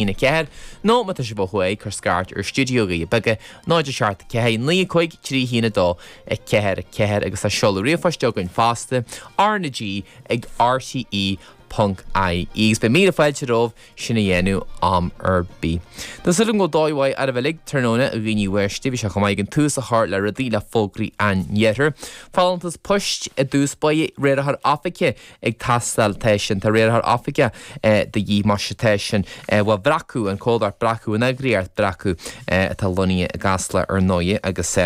1 4, nó má tá sibh ó thuaidh, cuir scairt ar Stiúideo Doirí Beaga, 0 7 4 9 5 3 1 2 4 4 agus tá seoladh ríomhphoist againn fosta, R na G ag RTÉ ponc IE agus beidh míle fáilte romhaibh sin a dhéanamh am ar bith. Tá suil agam go bhfuil dóigh mhaith oraibh uilig, tráthnóna a dhaoine uaisle, bheadh sé chomh maith againn tús a chur le rudaí le fógraí an iarthair. Folúntas poist i dtús báire, riarthóir oifige, ag teastáil tá sin tá riarthóir oifige de dhíth más ea tá sin bhuel Breacadh an comhlacht Breacadh an eagraíocht Breacadh atá lonnaithe i gCasla ar ndóigh agus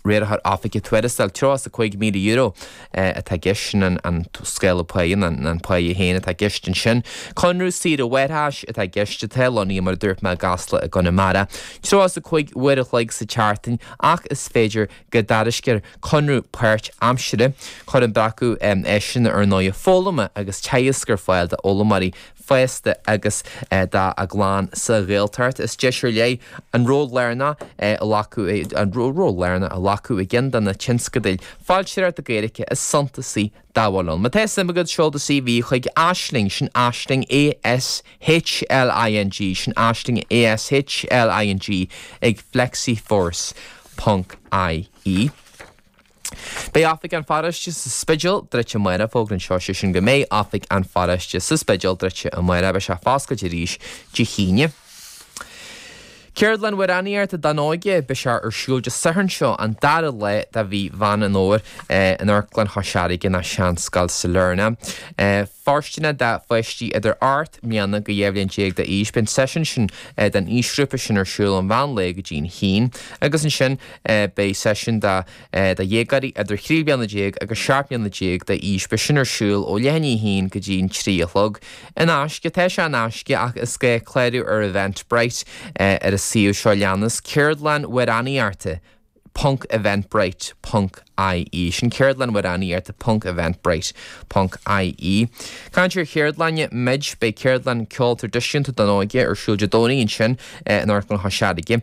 riarthóir oifige tuarastal tríocha is a cúig míle euro atá i gceist sin an an scála pá an an pá féin atá i gceist ansin conradh saoire mháithreachais atá i gceist atá lonnaithe mar a dúirt mé i gCasla i gConamara tríocha is a cúig uair a chloig sa tseachtain ach is féidir go dtairiscear conradh páirt aimsire, cuireann Breacadh áiseanna ar ndóigh, foghlama agus teagaisc ar fáil d'fhoghlaimeoirí fásta agus dá gclann sa Ghaeltacht. Is deis ar leith ann ról lárnach a ghlacadh, ról lárnach a ghlacadh i gceann de na tionscadail foilsitheoireachta Gaeilge is suntasaí dá bhfuil ann. Má tá suim agat, seol do CV chuig Aisling, sin Aisling ASHLING, sin Aisling ASHLING, ag FlexiForce. Ponc IE. Beidh Oifig an Pharóiste sa Spidéal druidte amárach, fógra anseo sin go mbeidh Oifig an Pharóiste sa Spidéal druidte amárach, beidh sé foscailte arís Dé hAoine. Ceardlann amhránaíochta don óige, beidh sé ar siúl Dé Sathairn seo an dara lá de mhí Mheán an Fhómhair in Amharclann Chois Fharraige, nó Seanscoil Sailearna. fóirsteanach do pháistí idir ocht mbliana go dhá bhliain déag d'aois. Beidh an seisiún sin don aoisghrúpa sin ar siúl ón mheán lae go dtí an haon agus ansin beidh seisiún do dhéagóirí idir trí bliana déag agus seacht mbliana déag d'aois. Beidh sin ar siúl ó leath i ndiaidh a haon go dtí an trí a chlog. In aisce, tá sé in aisce ach is gá clárú ar Eventbrite ar an suíomh seo leanas, Ceardlann amhránaíochta, ponc eventbrite ponc ie Sin ceardlann amhránaíochta ponc eventbrite ponc ie Caint ar cheardlanna muid Beidh ceardlann ceoil traidisiúnta don óige ar siúl Dé Domhnaigh ansin in Amharclann Chois Fharraige.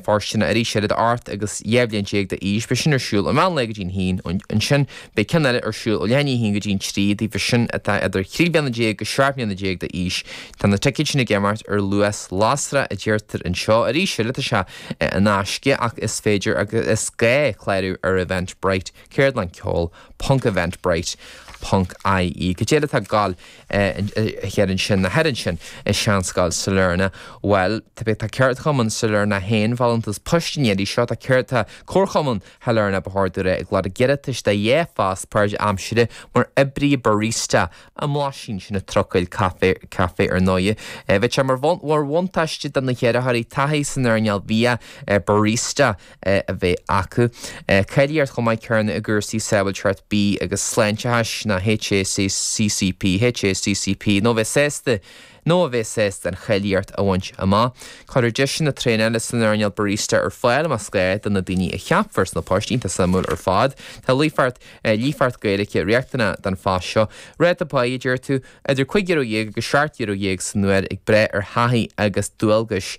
Fóirsteanach arís idir ocht agus dhá bhliain déag d'aois. Beidh sin ar siúl ó mheán lae go dtí an haon ansin. Beidh ceann eile ar siúl ó leath i ndiaidh a haon go dtí an trí daofa sin atá idir trí bliana déag agus seacht mbliana déag d'aois. Tá na ticéid sin ag imeacht ar luas lasrach a deirtear anseo. Arís eile, tá sé. in aisce ach is féidir agus is gá clárú ar Eventbrite, ceardlannceoil ponc eventbrite ponc ie. Cad é eile atá ag gabháil thiar ansin nó thiar ansin i Seanscoil Sailearna? Bhuel, tá tá Ceardchumann Sailearna féin folúntas poist an iarraidh seo tá céard tá Comharchumann Shailearna ba chóir domh a rá ag lorg iarratais do dhá phost páirtaimsire mar oibrí barista i mBlaisín sin an trucail caife caife ar ndóighe. Eh bheadh sé mar bhun mar bhuntáiste do na hiarrthóirí taithí san earnáil bhia eh barista eh a bheith acu. Eh cáilíocht chomh maith céanna i gcúrsaí sábháilteacht bia agus sláinteachais ná HACCP, HACCP nó bheith sásta Nó a bheith sásta an cháilíocht a bhaint amach. Cuirfear deiseanna traenála san earnáil barista ar fáil más gá do na daoine a cheapfar sna poist iontach suimiúil ar fad. Tá líofacht, líofacht Gaeilge riachtanach don phost seo. Ráta pá, a deir tú? Idir cúig euro dhéag agus seacht euro dhéag san uair ag brath ar thaithí agus dualgais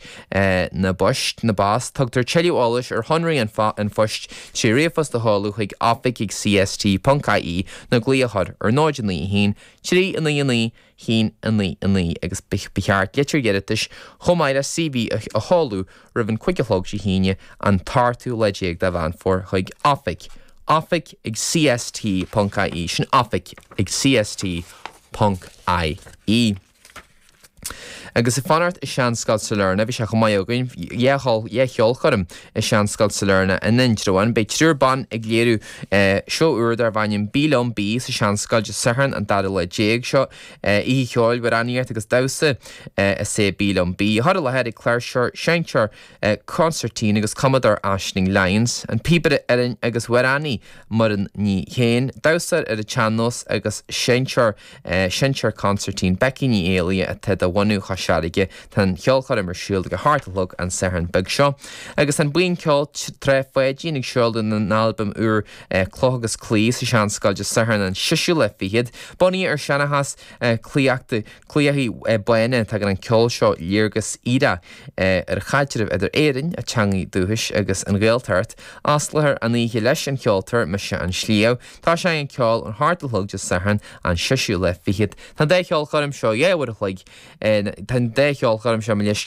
na bpoist, na bpost. Tugtar tuilleadh eolais ar shonraí an an phoist trí ríomhphost a sheoladh chuig oifig ag CST ponc IE nó glaoch ar ar 0 9 1 3 9 9 Sin 9, 9, agus ba cheart litir iarratais chomh maith le CV a sheoladh roimh an cúig a chlog Dé hAoine an t-ochtú lá déag de Mheán Fómhair chuig Oifig, Oifig ag CST ponc IE, sin Oifig ag CST ponc IE. Agus ag fanacht i Seanscoil Sailearna bhí sé chomh maith againn dhá cheolchoirm. I Seanscoil Sailearna in Indreabhán beidh triúr ban ag léiriú seó úr darb ainm Bí Liom, Bí sa tSeanscoil Dé Sathairn an 2ú lá déag seo. Oíche cheoil, amhránaíocht agus damhsa is ea Bí Liom, Bí. Curtha i láthair ag cláirseoir, seinnteoir consairtín agus cumadóir Aisling Lyons, an píobaire uilleann agus amhránaí Muireann Ní Shé, an damhsóir ar an tsean-nós agus seinnteoir, Seinnteoir consairtín Becky Ní Éallaithe atá de bhunadh Chois Fharraige. Tá an cheolchoirm ar siúl ag a hocht a chlog an Satharn beag seo. Agus tá an buíon ceoil Trá Pháidín ag seoladh a n-albam úr Cloch agus Claí sa Seanscoil Dé Sathairn an seisiú lá fichead. Bunaithe ar seanchas claíocha claíochaí bána, tugann an ceol seo léargas eile ar chaidreamh idir Éirinn, a teangaidh dúchais, agus an Ghaeltacht. Osclóthar an oíche leis an cheoltóir Mise an Sliabh. Tosóidh an ceol ón a hocht a chlog Dé Sathairn an seisiú lá fichead. Tá an dá cheolchoirm seo dhá uair an chloig, tá an dá cheolchoirm seo gabh mo leithscéal.